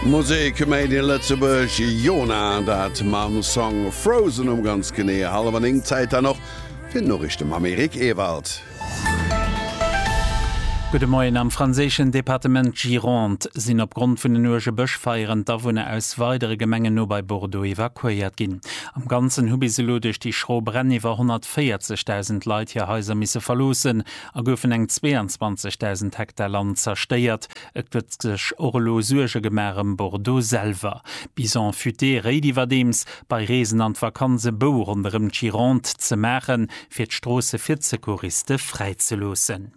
Musek made in Lëtzebuerg, Jona dat mam Song Frozen um ganz genee hallwer 9. Zäit dann och fir d'Noriichte mam Eric Ewald. Gudde Moien, Am franséischen Departement Gironde sinn opgrond vun den uerge Bëschfeieren d'Awunner aus weidere Gemengen no bei Bordeaux evakuéiert ginn. Am Ganzen hu bis elo duerch déi schro Bränn iwwer 140.000 Leit hir Haiser misse verloossen a goufen eng 22.000 Hektar Land zerstéiert. Et gëtt sech och elo Suerge gemaach ëm Bordeaux selwer. Bison futé réit iwwerdeems, bei Reesen an d'Vakanz e Bou ronderëm d'Gironde ze maachen, fir d'Stroosse fir d'Secouriste fräizeloossen.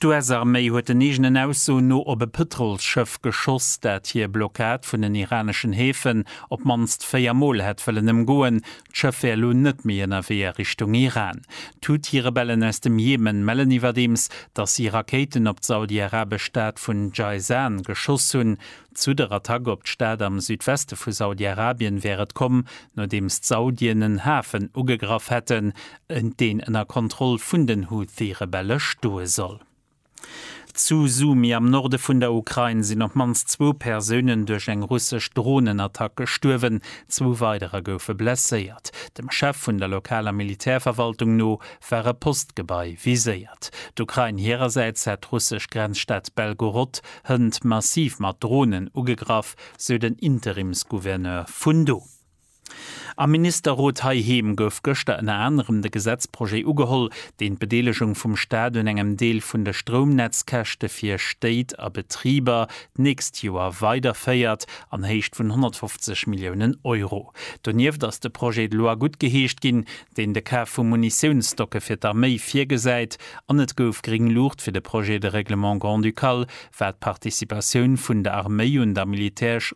D'US-Arméi huet den eegenen Aussoen no op e Pëtrolsschëff geschoss, dat hir Blockad vun den iraneschen Häfen op d'mannst véier Mol hätt wëllen ëmgoen, D'Schëff wär elo net méi ënnerwee a Richtung Iran. D'Houthi-Rebellen aus dem Jemen mellen iwwerdeems, datt si Rakéiten op d'saudi-arabesch Stad vun Jayzan geschoss hunn. Zu der Attack op d'Stad am Südweste vu Saudi-Arabien wär et komm, nodeems d'Saudien en Hafen ugegraff hätten, deen ënner Kontroll vun den Houthi-Rebelle stoe soll. Zu Sumy am Norde vun der Ukrain sinn op d'mannst zwou Persounen duerch eng russesch Dronenattack gestuerwen, zwou weiderer goufe blesséiert. Dem Chef vun der lokaler Militärverwaltung no war e Postgebai viséiert. D'Ukrain hirersäits hätt d'russesch Grenzstad Belgorod hënt massiv mat Dronen ugegraff, sou den Interimsgouverneur vun do. Am Ministerrot heiheem gouf gëschter ënner anerem de Gesetzprojet ugeholl, deen d'Bedeelegung vum Staat un engem Deel vun de Stroumnetzkäschte fir Stéit a Betriber d'nächst Joer weiderféiert, an Héicht vun 150 Milliounen Euro. Donieft ass de Projet de loi guttgeheescht ginn, deen de Kaf vu Munitiounsstocke fir d'Arméi virgesäit, an et gouf gréng Luucht fir de Projet de règlement grand-ducal, wat d'Participatioun vun der Arméi un der militäresch.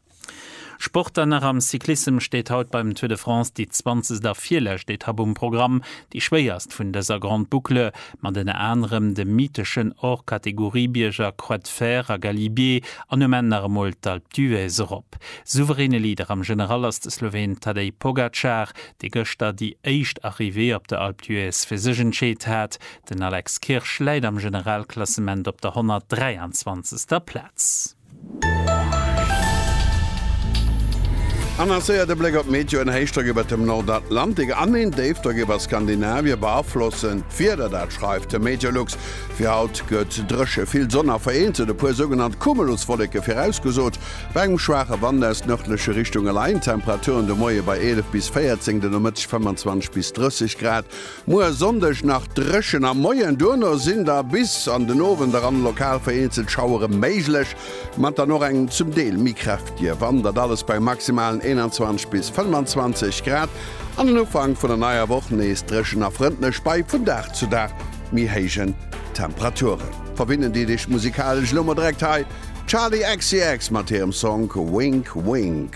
Sport an nach am Cyclissem steet haut beim Tour de France déi zwanzegt a virlescht Etapp um Programm, déi schwéierst vun dëser Grande Boucle, mat ënner anerem de mytheschen Hors-Catégorie-Bierger Croix de Fer a Galibier an um Enn nach emol d'Alpe d'Huez erop. Souveräne Leader am General ass de Sloween Tadej Pogacar, dee gëschter déi éischt Arrivée op der Alpe d'Huez fir sech entscheet hat. Den Alex Kirsch läit am Generalklassement op der 123. Plaz. Annoncéiert e Bléck op d'Meteoen, Héichdrock iwwert dem Nordatlantik an een Déifdrock iwwer Skandinavie beaflosse d'Wieder. Dat schreift de Meteolux. Fir haut gëtt dréche, vill Sonn a vereenzelt e puer sougenannt Cumuluswolleke virausgesot, bei engem schwaache Wand aus nërdleche Richtunge leien d'Temperaturen de Moie bei 11 bis 14, den Nomëtteg 25 bis 30 Grad. Muer Sonndeg nach dréchen am Moien, duerno sinn da bis an den Owend eran lokal vereenzelt Schauere méiglech, mat dann och engem zum Deel méi kräftige Wand. Dat alles bei maximalen 21 bis 25 Grad an den Ufank vun der neier Woch nees dréchen a frëndlech bei vun Dag zu Dag méi héijen Temperaturen. Verbinnen déi Dicht musikalesch elo mol direkt hei d'Charli XCX mat hirem Song Wink Wink.